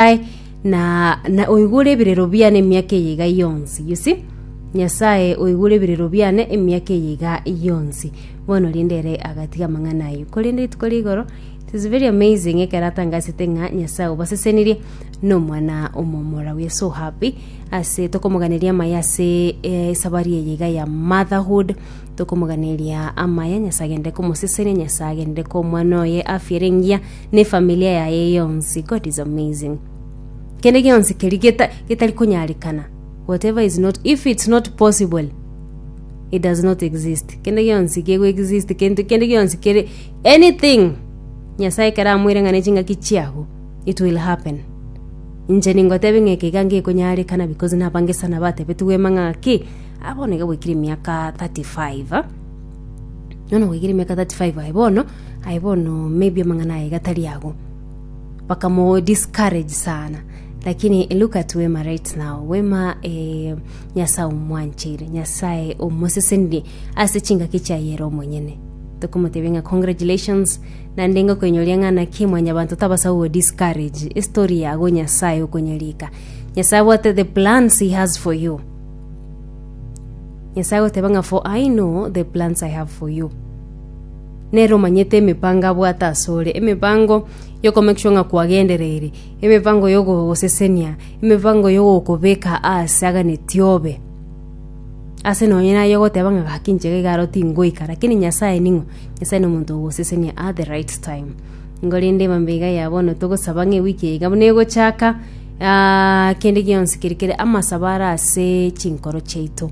Nyasae, na, na oigure ebirero biane emiaka eye iga yonsi you see nyasae oigure ebirero biane emiaka eye iga yonsi bono rinde ere agatiga amang'ana ayio korende rituko ria igoro it is very amazing ekero atangasete ng'a nyasae obasesenirie na omwana omomura we are so happy ase tokomoganeria amaye ase eh, esabari eye iga ya motherhood Tokomoganeria amaya Nyasae agende komosesenia Nyasae agende ko omwana oye afiere engiya ne familia yaye yonsi God is amazing kende gionsi keri geta getari konyarekana whatever is not if it's not possible it does not exist kende gionsi kego exist kende kende gionsi kere anything Nyasae kera amwire ng'ane chingaki chiago it will happen inche ningotebe ng'eke iga ngekonyarekana because nabange sana batebetigwe mang'aki Ah, bono iga gwaikire emiaka 35 ah. Bono gwaikire emiaka 35 aye bono aye bono maybe amang'ana aye gatari ago bakamu discourage sana lakini look at wema right now wema eh, nyasaye omwanchire nyasaye omosesenire ase chingaki chiayere omonyene tokomotebia ng'a congratulations nande ngokoinyoria ng'a naki mwanyabanto tabasa go discourage estory yago nyasaye okonyerika nyasaye abwate the plans he has for you Nyasae agoteba ng'a for I know the plans I have for you. Nere omanyete emipango abwate asore, emipango yokomake sure ng'a kwagendereire, emipango yogogosesenia, emipango yogokobeka ase aganeti obe. Ase nonye naye ogoteba ng'a gaki inche iga aro tingoika, lakini Nyasae ning'o? Nyasae nomonto ogosesenia at the right time. Nigo rende mambia iga ya bono togosaba ng'a ewiki eye iga buna egochaka, Kende gionsi keria kere amasabo are ase chinkoro chiaito,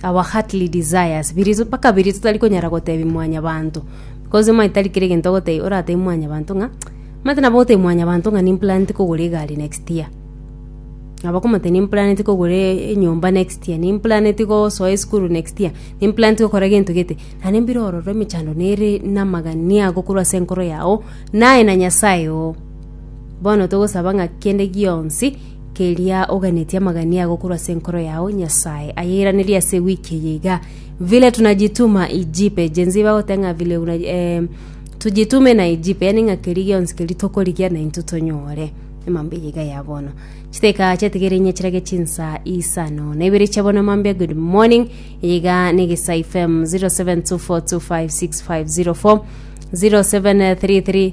our heartly desires, biria mpaka biria totari konyara gotebia mwanyabanto, because omanyete tari kera egento ogotebia oratebie mwanyabanto ng'a, omanyete nabo ogotebia mwanyabanto ng'a nimplaneti kogora egari next year, nabo okomotebia nimplaneti kogora enyomba next year, nimplaneti gosoa esukuru next year, nimplaneti gokora gento gete, naende mbire ororo emechando nere namagania gokorwa ase enkoro yago, naye na nyasae oo. Bono togosaba ng'a kende gionsi keria oganetie amagania ago korwa ase enkoro yao, Nyasae ayeranerie ase ewiki eye iga. Vile tunajituma ijipe, Gen Z bagoteba ng'a vile una, eh, tujitume na ijipe, yaani ng'a keria gionsi keria tokorigia na intwe tonyore emambia eye iga ya bono. Chiteka chiatigere inye chirage chinsa isano na ibere chia bono mambia good morning, eye iga na Egesae FM 0724256504, 0733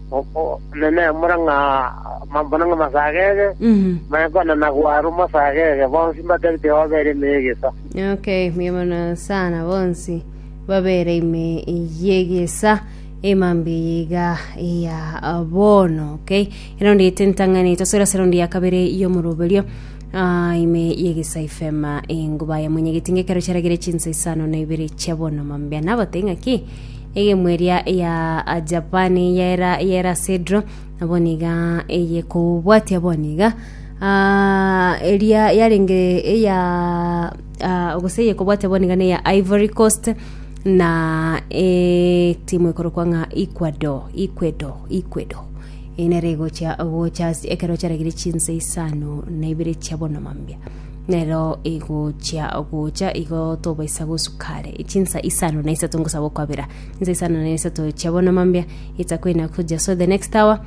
Omonene, mora ng'a mambuna ng'a masagege, manye konena gwaru masagege, bonsi mbatebite obere ime y'egesa. Okay, mbuya mono sana bonsi babere ime yegesa emambi yiga ya bono okay ero ndi tentang'ani tosora sero ndi yakabere yomoroberio Ah, ime yegesa ifema enguba ya mwenye gitinge kero charagire chinsa isano na ibere chabono mambia nabateng'a ki Egemwa eria ya Japani yaira yera cedro, nabo niga eye kobwatia bono iga. Ah, eria yarenge eya ah, gose eye kobwatia bono iga ne ya Ivory Coast na etimu ekorokwa ng'a Ecuador, Ecuador, Ecuador. Eye nere egochia gocha ase ekero chiaragire chinsa isano na ibere chia bono mambia. Nero igochia gocha igo tobaisa gosuka are chinsa isano na isato ngosaba okwabera chinsa isano na isato chia bono mambia itakwina kuja so the next hour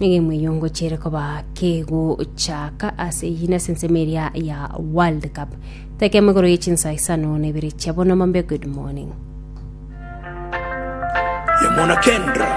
egemu eyo ngochere koba kegochaka ase eyina ase ensemo eria ya world cup tekemo igoro ye chinsa isano na ibere chia bono mambia good morning Yamona Kendra.